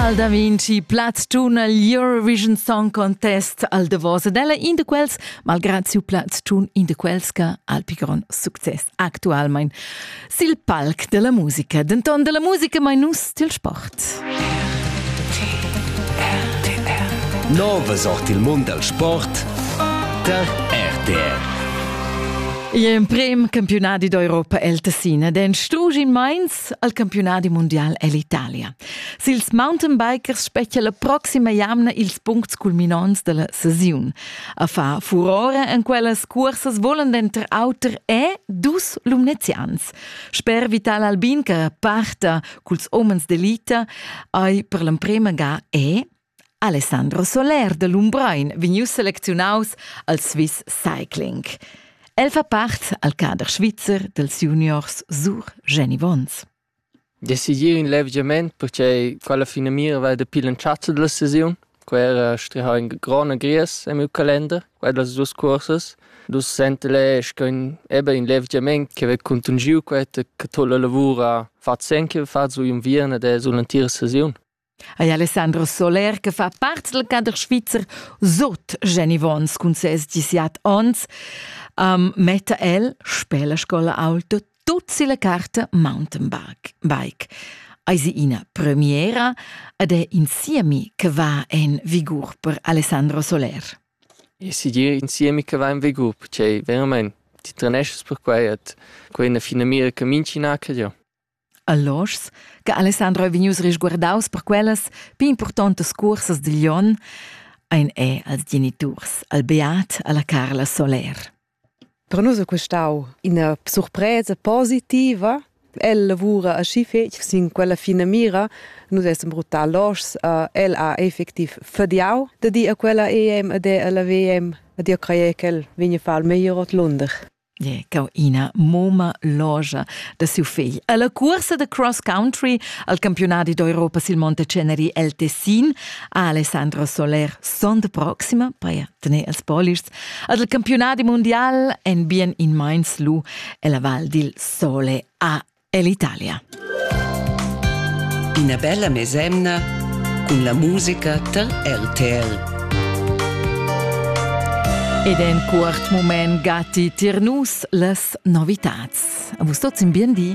Al da Vinci Platz tun il Eurovision Song Contest al davos ed ella in da quels, malgrad siu plaz tun in da quels che ha il più grond success actualmein. Sil palc della musica, denton della musica mai nus til sport. Nova sort il mund del sport der RTR. L'emprim campionadi d'Europa el Tessina, den strugi in Mainz al campionadi mondial el Italia. Sils mountainbikers spetga la proxima jamna ils puncts culminonts della sesiun. A far furore en quellas cursas volen denter auter e dus lumnezians. Sper Vital Albin che parta culs homens d'elita ei per l'emprema ga e Alessandro Soler de Lumbrein vegnius selecziunaus als Swiss Cycling. El fa part al cader svizzer dels juniors Sur Geni Wons. Decidir ün levgiament perche quella finamira vala dapi l'entschatta da la sesiun. Quai era strihà in grond agrias en miu calender, quai las duos cuorsas. Dus senteler sco ün eben ün levgiament che vei cuntangiu quai che to la lavur ha fat sen che vei fat su inviern ed es sul'entira sesiun. Ei Alessandro Soler che fa part dal cader svizzer sut Jenny Wons cun ses 17 onns, um, metta el sper la scola auto tut si la carta mountainbike. Bike. Eisi ina premiera ed è insiemi che va en vigur per Alessandro Soler. E si dir insiemi che va in vigur, perché veramente ti trenesci per quei e quei è una fina mira che minci naca jo. Alloschs, che Alessandro è vegnius risguardaus per quellas pli importantas cursas digl onn, ein è als geniturs, al Beat, alla Carla Soler. Per nus è questau ina surpresa positiva. El lavura aschi fetg sin quella fina mira. Nus essem brutal loschs. Uh, el ha effectiv fadiau da dir a quella EM ed è alla WM ed io creie che el vegna far il meglier ot Lunder. Yeah, cau ina moma logia da siu fegl. Alla cursa da cross country al campionati d'Europa sil Monteceneri el Tessin ha Alessandro Soler son de proxima per tener els polists ad il campionati mondial en bien in mainz lu ella val dil sole a ell'Italia. Ina bella mesemna cun la musica tar RTL. Ed en quart mument gatti tir nus las novitats. Vus tots in bien di.